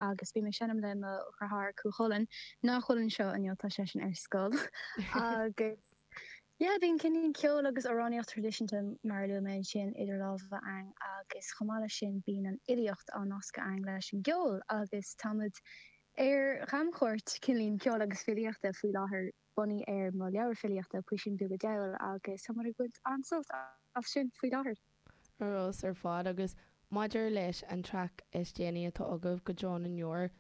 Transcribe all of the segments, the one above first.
agus bím ag seinm le mo dheartháir Cú Chulainn, nach bhfuil anseo inniu, tá seisean ar scoil, agus yeah, bíonn cineál ceol agus amhránaíocht tradisiúnta mar a luaigh mé ansin idir lámha a'ainn agus chomh maith le sin bíonn an fhilíocht á nascadh a'ainn leis an gceol agus táimid ar chamchuairt cineál ceoil agus filíochta faoi láthair bunaithe ar mo leabhar filíochta Puisín Beag a' Diabhail agus táimid ag baint an-sult as sin faoi láthair. ar fheabhas ar fad agus maidir leis an traic is déanaí atá agaibh, Go Deo na nDeor,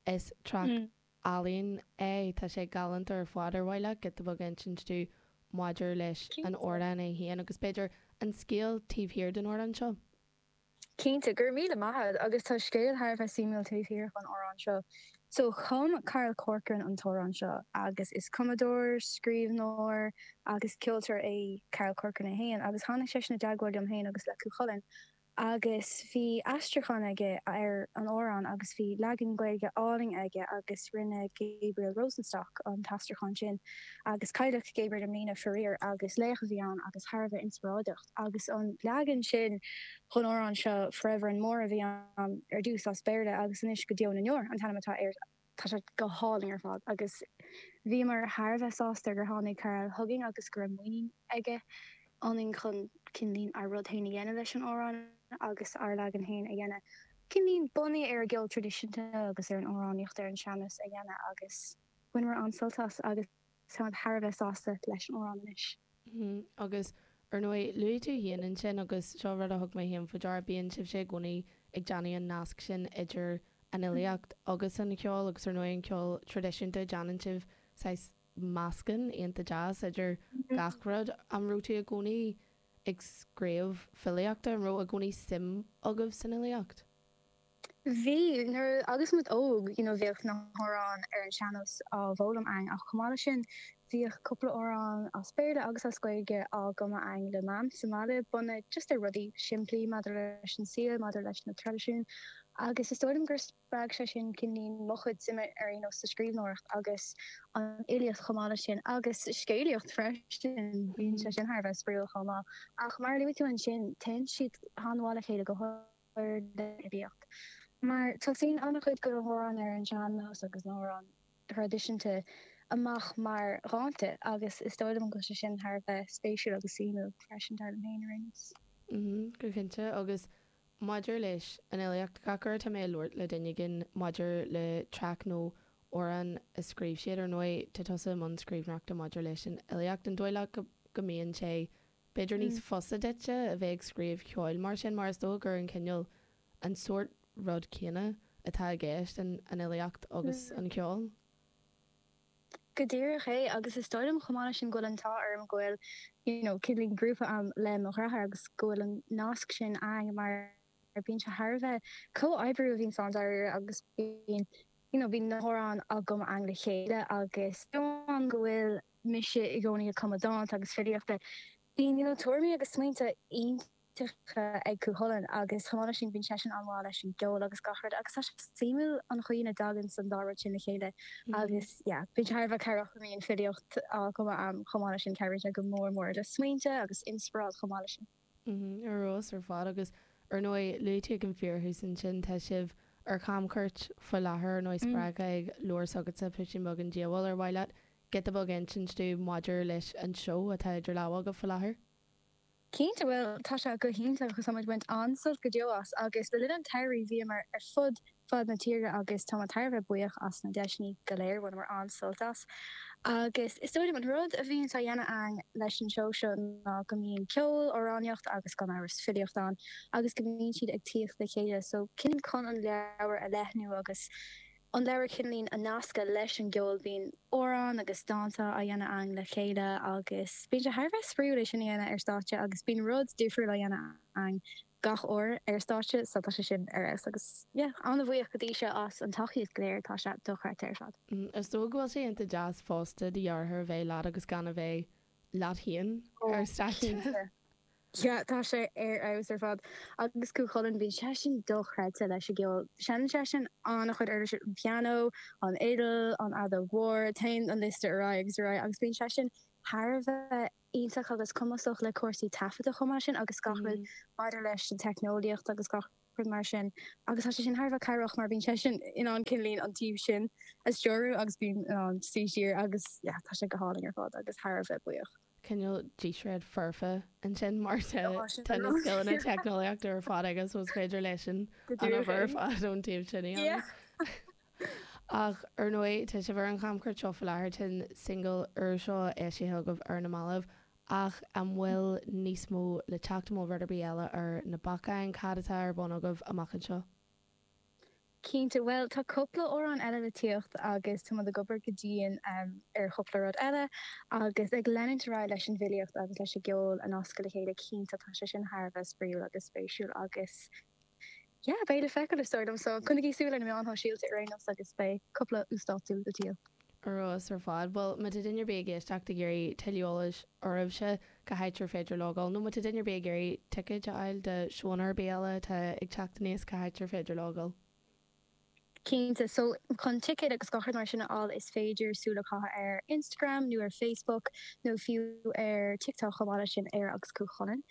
is traic álainn é, tá sé galánta ar fad, ar mhaith leat giota beag a insint dúinn maidir leis an Cinnte. amhrán é féin agus b'fhéidir an scéal taobh thiar den ardán seo? Cinnte, go raibh míle maith a'd agus tá scéal thar a bheith suimiúil taobh thiar den amhrán seo. So, chum Carl Corcoran an t-amhrán seo, agus is cumadóir, scríbhneoir agus ceoltóir é Carl Corcoran é féin, agus tháinig seisean i dteagmháil liom féin agus le Cú Chulainn, agus bhí aistriúchán aige ar an amhrán agus bhí leagan Gaeilge álainn aige agus rinne Gabriel Rosenstock an t-aistriúchán sin, agus cailleadh Gabriel i mbliana faraor, agus laoch a bhí ann agus thar a bheith inspioráideach. Agus an leagan sin den amhrán seo Forever and More a bhí ann ar dtús as Béarla agus anois go deo na ndeor an t-ainm atá air. Tá sé go hálainn ar fad agus bhíomar thar a bheith sásta gur tháinig Carl chugainn agus go raibh muinín aige ionainn chun cineál ár rud féin a dhéanamh leis an amhrán agus ár leagan féin a dhéanamh. Cineál bunaithe ar an gceol traidisiúnta agus ar an amhránaíocht ar an sean-nós a dhéanamh agus bhaineamar an-sult as agus. Tá mé thar a bheith sásta leis an amhrán anois. Hm, agus Ar ndóigh, luaigh tú féin ansin, agus seo rud a thug mé féin faoi deara, bíonn sibhse i gcónaí ag déanamh an nasc sin idir an fhilíocht agus an cheol, agus Ar ndóigh an ceol traidisiúnta, déanann sibh saghas meascán iontach deas idir gach rud. An raibh tú i gcónaí ag scríobh filíochta, an raibh i gcónaí suim agaibh san fhilíocht? Bhí, nuair agus muid óg, you know, bhíodh na hamhráin ar an sean-nós á bhfoghlaim againn ach chomh maith leis sin bhíodh cúpla amhrán as Béarla agus as Gaeilge á gcumadh againn le Mam sa mbaile bunaithe just ar rudaí simplí maidir leis an saol, maidir leis na traidisiúin agus is dóigh liom gur spreag sé sin cineál mo chuid suime ar aon nós sa scríbhneoireacht agus an fhilíocht chomh maith leis sin agus scéalaíocht freisin, bíonn sé sin thar a bheith spraíúil chomh maith ach mar a luaigh tú ansin téann siad an-mhaith le chéile go háirid an fhilíocht. Mar tosaíonn an-chuid de na hamhráin ar an sean-nós agus na hamhráin traidisiúnta amach mar dhánta agus is dóigh liom go bhfuil sé sin thar a bheith spéisiúil agus suimiúil freisin, dar liom féin, ar aon nós. Go cinnte. Agus maidir leis an fhilíocht, gach uair atá mé ag labhairt le duine éigin maidir le traic nó amhrán a scríobh siad, ar ndóigh, tá tusa i mbun scríbhneoireachta maidir leis an fhilíocht, an dóigh leat go mbíonn sé B'fhéidir níos fusa duitse a bheith ag scríobh ceoil mar sin, mar is dóigh gurb an cineál, an sórt rud céanna atá i gceist in an fhilíocht agus an ceol? Go díreach é, agus is dóigh liom chomh maith leis sin go bhfuil an t-ádh orm go bhfuil, you know, kind of like grúpa a'm le mo dhreatháir agus go bhfuil an nasc sin a'inn mar bíonn sé thar a bheith comhoibriú a bhíonns ann dáiríre agus bíonn, you know, bíonn na hamhráin agam a'inn le chéile agus go bhfuil. mise i gcónaí ag cumadh dánta agus filíochta. Bíonn bíonn tuairimí agus smaointe iontacha ag Cú Chulainn agus chomh maith leis sin bíonn seisean an-mhaith leis an gceol agus gach rud agus tá sé suimiúil an chaoi ina dtaganns an dá rud sin le chéile agus yeah bíonn sé thar a bheith cabhrach go mbíonn filíocht á cumadh a'm chomh maith leis sin cabhraíonn sé go mór mór le smaointe agus inspioráid chomh maith leis sin. Ar fheabhas ar fad. Agus ar ndóigh, luaite ag an bhfíor thús ansin, tá sibh ar chamchuairt faoi láthair, ar ndóigh, spreagtha ag leabhar s'agatsa, Pisín Beag an Diabhail, ar mhaith leat giota beag a insint dúinn maidir leis an seó atá idir lámha agaibh faoi láthair? Cinnte, bhuel, tá sé go hiontach agus táimid ag baint an-sult go deo as agus le linn an tsamhraidh bhíomar ar fud fud na tíre agus tá mé thar a bheith buíoch as na deiseannaí go léir, bhaineamar an-sult as agus is dóigh liom an rud a bhíonns á dhéanamh againn leis an seó seo ná go mbíonn ceol, amhránaíocht agus gan amhras filíocht ann agus go mbíonn siad ag tíocht le chéile so kind of like chun an leabhar a leathnú agus an leabhar kind of like a nascadh leis an gceol, bíonn amhráin agus dánta á dhéanamh againn le chéile agus bíonn sé thar a bheith spraoiúil é sin a dhéanamh ar stáitse agus bíonn rud difriúil á dhéanamh againn. gach uair ar stáitse so tá sé sin ar fheabhas agus yeah an-bhuíoch go dtí seo as an tacaíocht go léir tá sé do-chreidte ar fad. Is dóigh go bhfuil sé ionta deas fosta do dheartháir a bheith leat agus gan a bheith leat féin ar stáitse. Oh cinnte yeah tá sé ar fheabhas ar fad agus Cú Chulainn bíonn seisean do-chreidte leis an gceol seineann seisean an-chuid uirlisí an pianó, an fhidil, an fheadóg mhór, téann an liosta ar aghaidh agus ar aghaidh agus bíonn seisean thar a bheith iontach agus cumasach le cúrsaí taifeadta chomh maith leis sin agus gach rud maidir leis an teicneolaíocht agus gach rud mar sin agus tá sé sin thar a bheith cabhrach mar bíonn seisean in ann kind of like an taobh sin a stiúradh agus bím in ann suí siar agus yeah tá sé go hálainn ar fad agus thar a bheith buíoch. cineál díséad foirfe ansin mar tá tá na scileanna teicneolaíochta ar fad aige so is féidir leisean an obair ar fad ón taobh sin yeah. Ach, ar ndóigh, tá sibh ar an chamchuairt seo faoi láthair, tá an singil úr seo eisithe agaibh ar na mallaibh, ach an bhfuil níos mó le teacht, an bhfuil rud ar bith eile ar na bacáin, cad atá ar bun agaibh amach anseo? Cinnte, bhuel, tá cúpla amhrán eile le tíocht agus táimid ag obair go dian ar chúpla rud eile agus ag leanúint ar aghaidh leis an bhfilíocht agus leis an gceol a nascadh le chéile, cinnte, tá sé sin thar a bheith spraíúil agus spéisiúil agus. yeah, beidh le feiceáil is dóigh liom. So coinnigí súil ar na meáin shóisialta ar aon nós agus beidh cúpla uasdátú go diail. Ar fheabhas ar fad. Bhuel, má tá duine ar bith ag éisteacht ag iarraidh tuilleadh eolais oraibhse, cá háit ar féidir logáil? Nó má tá duine ar bith ag iarraidh ticéid a fháil do seónna ar bith eile atá ag teacht aníos, cá háit ar féidir logáil? Cinnte. So, chun ticéid agus gach rud mar sin a fháil is féidir súil a chaitheamh ar Instagram nó ar Facebook nó fiú ar TikTok chomh maith leis sin, Éire agus Cú Chulainn.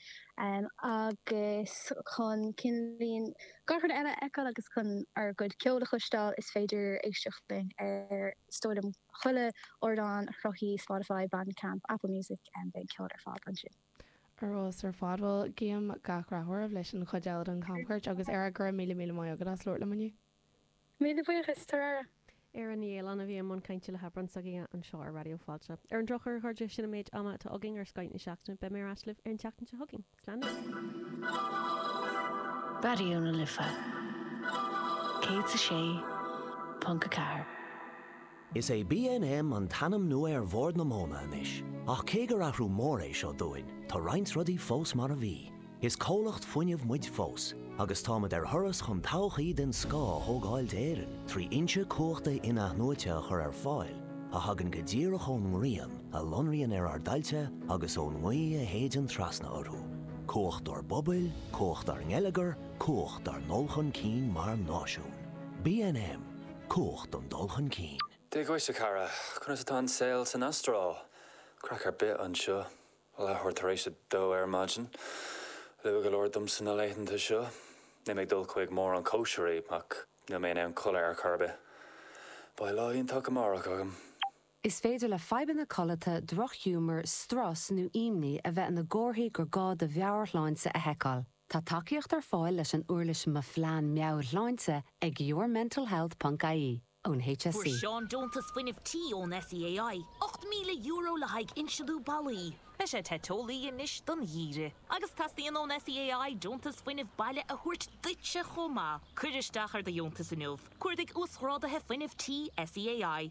Agus chun kinda like gach rud eile a fheiceáil agus chun ár gcuid ceoil a chloisteáil is féidir éisteacht linn ar, is dóigh liom, chuile ardán sruthaithe Spotify, Bandcamp, Apple Music, beidh an ceol ar fáil ansin. Ar fheabhas ar fad. Bhuel, guím gach rath oraibh leis an chuid eile den chamchuairt agus ar aghaidh, go raibh míle míle maith agat as labhairt liom inniu. Míle buíochas, tabhair aire. Éire Ní Fhaoláin a bhí i mbun cainte le hAbhrán s'againne anseo ar Raidió Fáilte. Ar an drochuair, a chairde, sin an méid ama atá againn ar Scoth na Seachtaine. Beidh mé ar ais libh ar an tseachtain seo chugainn. Slán miotal! Raidió na Life 106.4. Is é BNM an t-ainm nua ar Bhord na Móna anois, ach cé gur athrú mór é seo dúinn, tá roinnt rudaí fós mar a bhí. Is comhlacht fuinnimh muid fós, agus táimid ar thuras chun todhchaí den scoth a thógáil d'Éirinn trí fhoinse cumhachta in-athnuaite a chur ar fáil a thagann go díreach ón ngrian a lonraíonn ar ár dtailte agus ón ngaoth a shéideann trasna orthu, cumhacht dár bpobail, cumhacht dár ngeilleagar, cumhacht dár ndul chun cinn mar náisiún. BNM. Cumhacht an dul chun cinn. Dia dhuit, a chara. Conas atá an saol san Astráil? Craic ar bith anseo. Leathuair tar éis a dó ar maidin. Luath go leor domsa na laethanta seo. Níl mé ag dul chuig mórán cóisirí, ach níl mé in ann codladh ar chor ar bith. Beidh lá iontach amárach agam. Is féidir le fadhbanna codlata, drochghiúmar, strus nó imní a bheith ina gcomharthaí gur gá do mheabhairshláinte a sheiceáil. Tá tacaíocht ar fáil leis an uirlis Mo Phlean Meabhairshláinte ag yourmentalhealth ponc ie, ón HSE. Fuair Seán deontas fuinnimh tí ón SEAI, €8,000 le haghaidh inslithiú ballaí. Beidh sé te teolaí anois don gheimhreadh. Agus teastaíonn ón SEAI deontas fuinnimh baile a thabhairt duitse chomh maith. Cuir isteach ar do dheontas inniu. Cuardaigh Uasghráduithe Fuinnimh Tí SEAI.